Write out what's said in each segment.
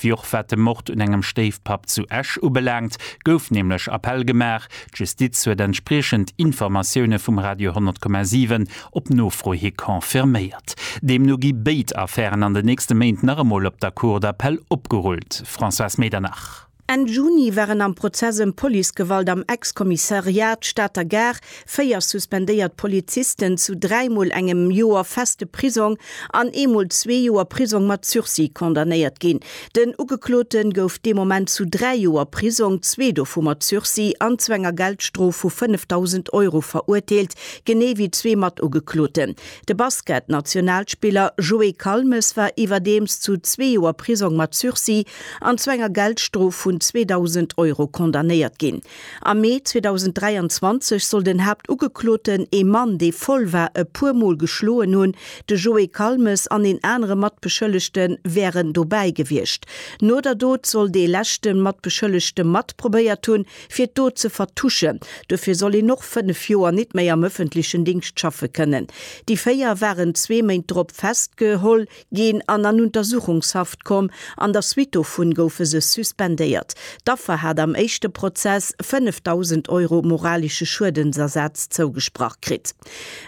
Wéi och wat de Mord un engem Stéifpapp zu Esch ubelaangt, gouf nämlech Appell gemaach. D'Justiz huet entspriechend Informatioune vum Radio 10,7 op Nofro hi confirméiert. Deemno gi béid Affären an den nächste Méint nach emol op der Cour d'appel opgerullt. Françoise Medernach. Enn Juni waren am Prozess ëm Policegewalt am Ex-Kommissariat Stater Gare Véier suspendéiert Polizisten zu dräimol engem Joer feste Prisong an eemol zwee Joer Prisong mat Sursis condamnéiert ginn. Den Ugeklote gouf dee Moment zu dräi Joer Prisong, zwee dovu mat Sursis, an zu enger Geldstrof vu 5.000 Euro verurteelt, genee wéi zwee Matugekloten. De Basket-Nationalspiller Joé Calmes war iwwerdeems zu zwee Joer Prisong mat Sursis an zu enger Geldstrof vun 2.000 Euro condamnéiert ginn. Am Mee 2023 soll den Haaptugekloten, ee Mann, dee voll war, e puer Mol geschloen hunn. De Joé Calmes an een anere Matbeschëllegte wären dobäi gewiescht. No der Dot soll dee leschte Matbeschëllegte mat probéiert hunn, fir d'Dot ze vertuschen. Dofir soll een och fënnef Joer nit méi am ëffentlechen Dingscht schaffe kënnen. Déi véier waren zwee Méint drop festgeholl ginn an an Untersuchungshaft komm. An der Suite dovun goufe se suspendéiert. D'Affer hat am éischte Prozess 5.000 Euro moralesche Schuedensersaz zougesprach kritt.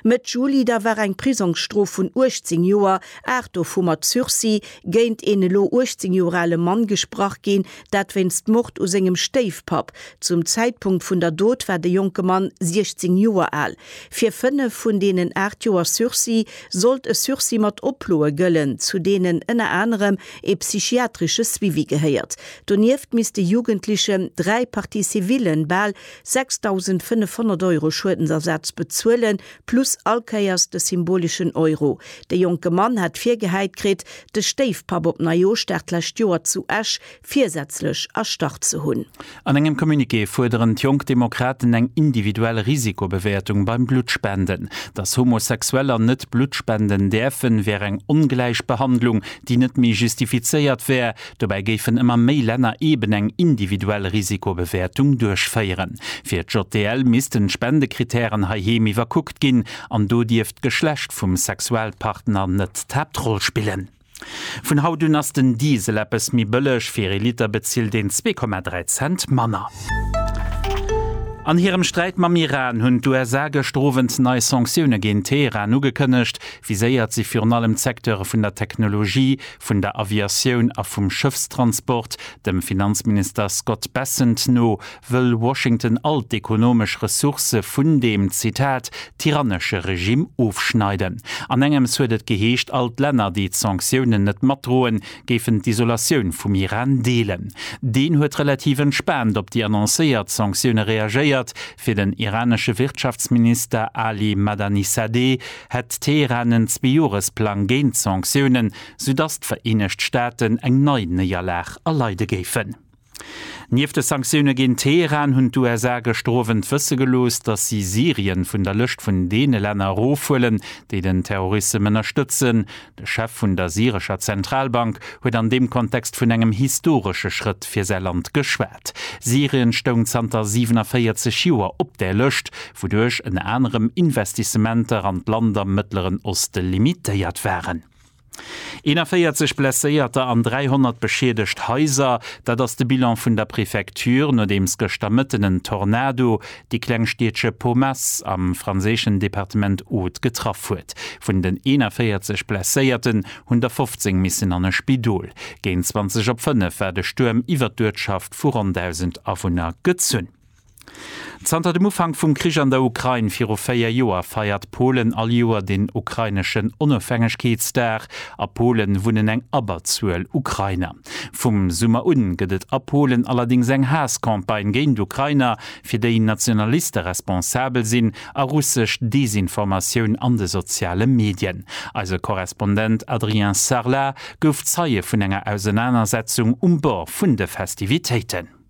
Mëtt Juli da war eng Prisongsstrof vun 18 Joer, aacht dovu mat Sursis, géint een elo 18 Joer ale Mann gesprach ginn, dat wéinst Mord u sengem Stéifpapp. Zum Zäitpunkt vun der Dot war de jonke Mann 16 Joer al. Fir fënnef vun deenen aacht Joer Sursis sollt e Sursis mat Oploe gëllen, zu deenen ënner anerem ee psychiatresche Suivi gehéiert. Donieft misst de Jugendlechen dräi Parties civillen, bal 6.500 Euro Schuedensersaz bezuelen, plus all Kéiers de symboleschen Euro. De jonke Mann hat virgehäit kritt, de Stéifpapp op Neijoschdag d'lescht Joer zu Esch virsätzlech erstarrt ze hunn. An engem Communiqué fuerderen d'Jonk Demokraten eng individuell Risikobewäertung beim Bluttspenden. Datt Homosexueller net Blutt spenden däerfen, wär eng Ongläichbehandlung, déi net méi justifizéiert wär. Dobäi géifen ëmmer méi Länner eben eng individuell Risikobewäertung duerchféieren. Fir d'JDL missten d'Spendekrittären heiheem iwwerkuckt ginn. An do dierft d'Geschlecht vum Sexualpartner net d'Haaptroll spillen. Vun haut un ass den Diesel eppes méi bëlleg, fir ee Liter bezilt een 2,3 Cent manner. An hirem Sträit mam Iran hunn d'USA gëschter Owend nei Sanktioune géint Teheran ugekënnegt. Viséiert si virun allem d'Secteure vun der Technologie, vun der Aviatioun a vum Schëffstransport. Dem Finanzminister Scott Bessent no wëll Washington all d'ekonomesch Ressourcë vun deem, Zitat, tyrannesche Regimm ofschneiden. An engems huet et geheescht, all d'Länner, déi d'Sanktiounen net matdroen, géifen d'Isolatioun vum Iran deelen. Deen huet relativ entspaant op déi annoncéiert Sanktioune reagéiert. Fir den iranesche Wirtschaftsminister Ali Madanisadeh hätt Teheran en Zweejoeresplang géint d'Sanktiounen, soudatt d'Vereenegt Staaten eng nei Néierlag erleide géifen. Nieft de Sanktioune géint Teheran hunn d'USA gëschter Owend wësse gelooss, datt si Syrien vun der Lëscht vun deene Länner erofhuelen, déi den Terrorissem ënnerstëtzen. De Chef vun der syrescher Zentralbank huet an deem Kontext vun engem historesche Schrëtt fir säi Land geschwat. Syrien stoung zanter 47 Joer op där Lëscht, wouduerch ënner anerem Investissementer an d'Land am Mëttleren Oste limitéiert waren. 41 Blesséierter an 300 beschiedegt Haiser, dat ass de Bilan vun der Prefecture, nodeems gëschter Mëtten en Tornado déi kleng Stiedche Pomace am franséischen Departement Aude getraff huet. Vun den 41 Blesséierten hunn der 15 missen an e Spidol. Géint 20 op 5 war de Stuerm iwwert d'Uertschaft vu ronn 1.000 Awunner gezunn. Zanter dem Ufank vum Krich an der Ukrain viru véier Joer feiert Polen all Joer den ukraineschen Onofhängegkeetsdag. A Pole wunnen eng Abberzuel Ukrainer. Vum Summer un gëtt et a Polen allerdéngs eng Haass-Campagne géint Ukrainer, fir déi Nationaliste responsabel sinn, a russesch Desinformatioun an de soziale Medien. Eise Korrespondent Adrien Sarlat gouf Zeie vun enger Ausenanersetzung um Bord vun de Festivitéiten.